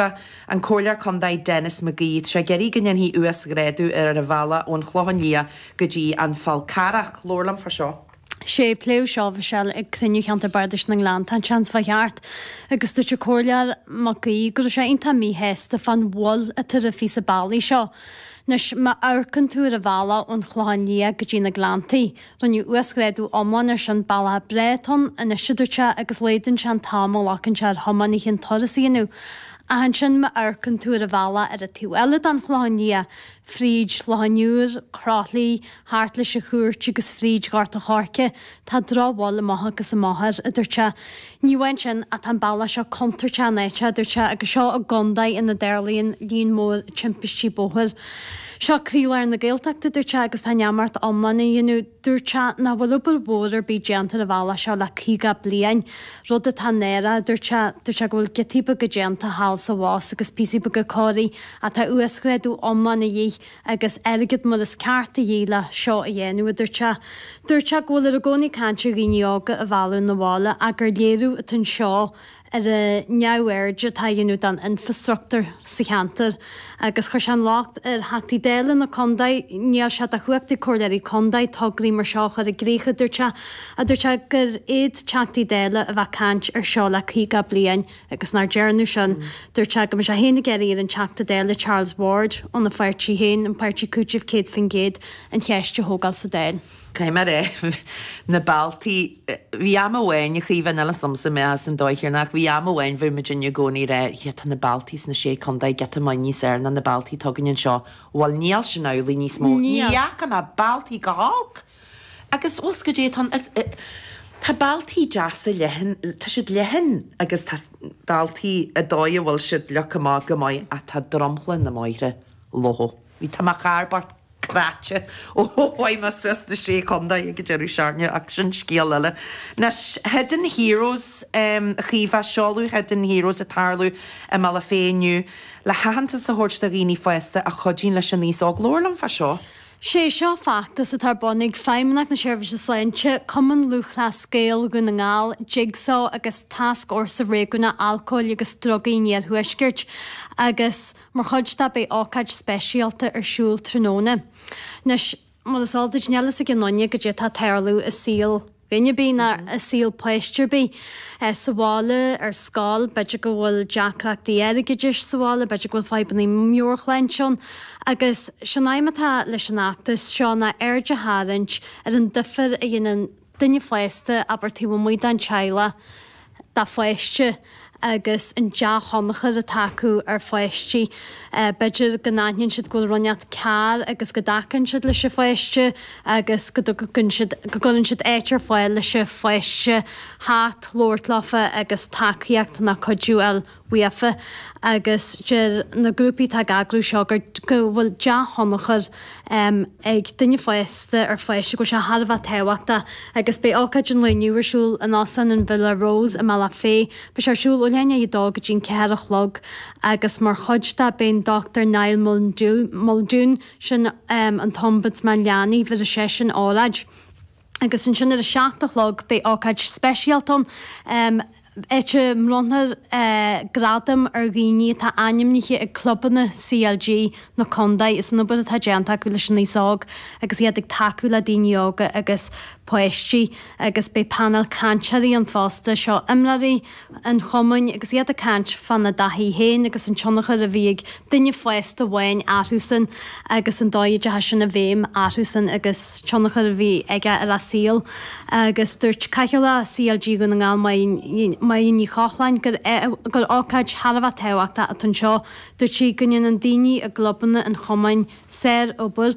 An Comhairleoir Contae Denis McGee, tá sé ag iarraidh go ndéanfaí uasghrádú ar ar an bhealach ón Chlochán Liath go dtí an Fál Carrach. Labhair liom fá seo. Sea, pléadh seo ag Cruinniú Cheantar Bardais na nGleanntach an tseachtain seo chuaigh thart, agus dúirt an Comhairleoir McGee go raibh sé iontach míshásta fán mhoill atá ar an phíosa bealaigh seo. Anois, má amharcann tú ar an bhealach ón Chlochán Liath go dtí na Gleanntaí, Rinneadh uasghrádú iomlán air sin bealach ar dóigh atá ann anois a dúirt sé, agus laghdaíonn sé an t-am a ghlacann sé ar thiománaithe an turas a dhéanamh. Ach ansin má amharcann tú ar an bhealach ar an taobh eile den Chlochán Liath, fríd Loch an Iúir, Croithlí, thart leis an Chúirt agus fríd Ghort an Choirce, tá drochbhail amach agus amach air, a dúirt sé. Ní amháin sin, ach tá an bealach seo contúirteach in áiteanna, a dúirt sé, agus seo i gcontae ina dtarlaíonn líon mór timpistí bóthair. Seo croílár na Gaeltachta, a dúirt sé, agus tá neamart iomlán á dhéanamh. Dúirt sé nach bhfuil obair mhór ar bith déanta ar an bhealach seo le caoga bliain, rud atá náireach, a dúirt sé. Dúirt sé go bhfuil giotaí beaga déanta thall is abhus agus píosaí beaga cóirithe ach tá uasghrádú iomlán a dhíth. agus airgead mar is ceart a dhíth le seo a dhéanamh, a dúirt sé. Dúirt sé go bhfuiltear i gcónaí ag caint ar dhaoine óga a mhealladh 'na bhaile ach gur léiriú atá anseo ar an neamhaird atá á dhéanamh don infreastruchtúr sa cheantar agus chuir sé an locht ar Theachtaí Dála na Contae. Níl sé de chumhacht ag Comhairleoirí Contae tograí mar seo a chur i gcrích, a dúirt sé. Dúirt sé gur iad Teachtaí Dála ba cheart a bheith ag caint ar seo le 50 bliain, agus nach ndearnadh sin. Dúirt sé, go mbeidh sé féin ag iarraidh ar an Teachta Dála Charles Ward óna pháirtí féin, an Páirtí Cúitimh 100%, an cheist a thógáil sa Dáil. Cad é mar atá na bealtaí? Bhí am amháin, a Chaoimhe, ná las ormsa mé as an dóigh thiar ná ach bhí am amháin, bhí muidinne i gcónaí ag rá, yeah, tá na bealtaí sna Sé Contae giota maith níos fhearr ná na bealtaí atá againn anseo. Bhuel, níl sin amhlaidh níos mó. Ní fhaca mé bealtaí chomh holc! Agus a bhfuil a fhios agat goidé, tá, tá bealtaí deasa leathan, tá siad leathan agus tá bealtaí ar dóigh a bhfuil siad leagtha amach go maith ach tá dromchla na mbóithre lofa. Bhí, tá mo charr bocht cráite ó thiomáin mé suas sna Sé Contae go Doire Dé Sathairn ach sin scéal eile. Anois, Hidden Heroes, a Chaoimhe, seoladh Hidden Heroes ag tarlú i mBaile Féith inniu le haitheantas a thabhairt do dhaoine fásta a chuidíonn leis an aos óg. Labhair liom fá seo. Sé seo feachtas atá ar bun ag Feidhmeannacht na Seirbhíse Sláinte, Cumann Lúthchleas Gael Dhún na nGall, Jigsaw agus Tascfhórsa Réigiúnach Alcóil agus Drugaí an Iarthuaiscirt agus mar chuid de beidh ócáid speisialta ar siúl tráthnóna. Anois, mar is eol duit, níl a fhios ag aon duine goidé atá ag tarlú i saol. Duine ar bith ná i saol páiste ar bith sa bhaile, ar scoil, b'fhéidir go bhfuil deacrachtaí airgeadais sa bhaile, b'fhéidir go bhfuil fadhbanna meabhairshláinte ann. Agus sé'n aidhm atá leis an fheachtas seo ná aird a tharraingt ar an difir a dhéanann duine fásta, abair, taobh amuigh den teaghlach, dá pháiste agus an dea-thionchar atá acu ar pháistí. B'fhéidir go n-aithníonn siad go bhfuil rud ínteacht cearr agus go dtacaíonn siad leis an pháiste agus go dtugann siad, go gcuireann siad áit ar fáil leis an pháiste theacht, labhairt leofa agus tacaíocht ná cuidiú a fháil faofa agus deir na grúpaí atá ag eagrú seo gur go bhfuil dea-thionchar ag duine fásta ar pháiste, go bhfuil sé thar a bheith tábhachtach agus beidh ócáid an lae inniu ar siúl in Óstán an Villa Rose i mBaile Átha Féith. Beidh sé ar siúl ó leath i ndiaidh a dó go dtí an ceathair a chlog agus mar chuid de beidh an Dr Niall Muldoon, sin an tOmbudsman Leanaí, beidh seisean ag óráid. agus ansin ar a seacht a chlog beidh ócáid speisialta ann, áit a mbronnfar gradaim ar dhaoine atá ainmnithe ag clubanna CLG na contae as an obair atá déanta acu leis an aos óg agus iad ag tacú le daoine óga agus páistí agus beidh painéal cainteoirí ann fosta, seo imreoirí an chumainn agus iad ag caint fana dtaithí féin agus an tionchar a bhí ag duine fásta amháin orthusan agus an dóigh a dteachaidh sin i bhfeidhm orthusan agus tionchar a bhí aige ar a saol agus dúirt Cathaoirleach CLG Dhún na nGall Máire Ní Chochláin gur ócáid thar a bheith tábhachtach atá anseo dúirt sí go ndéanann daoine i gclubanna an chumainn sár-obair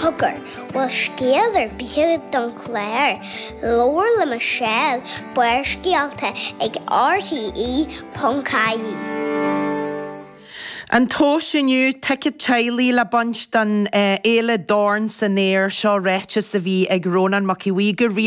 Cogar, bhfuil scéal ar bith don chlár? Labhair le Michelle, Barrscéalta ag RTÉ.ie. An Tomhas inniu, Ticéad Teaghlaigh le baint don fhéile Dorn san Aer, seo ráiteas a bhí ag Rónán Mac Aodha Bhuí go rialta,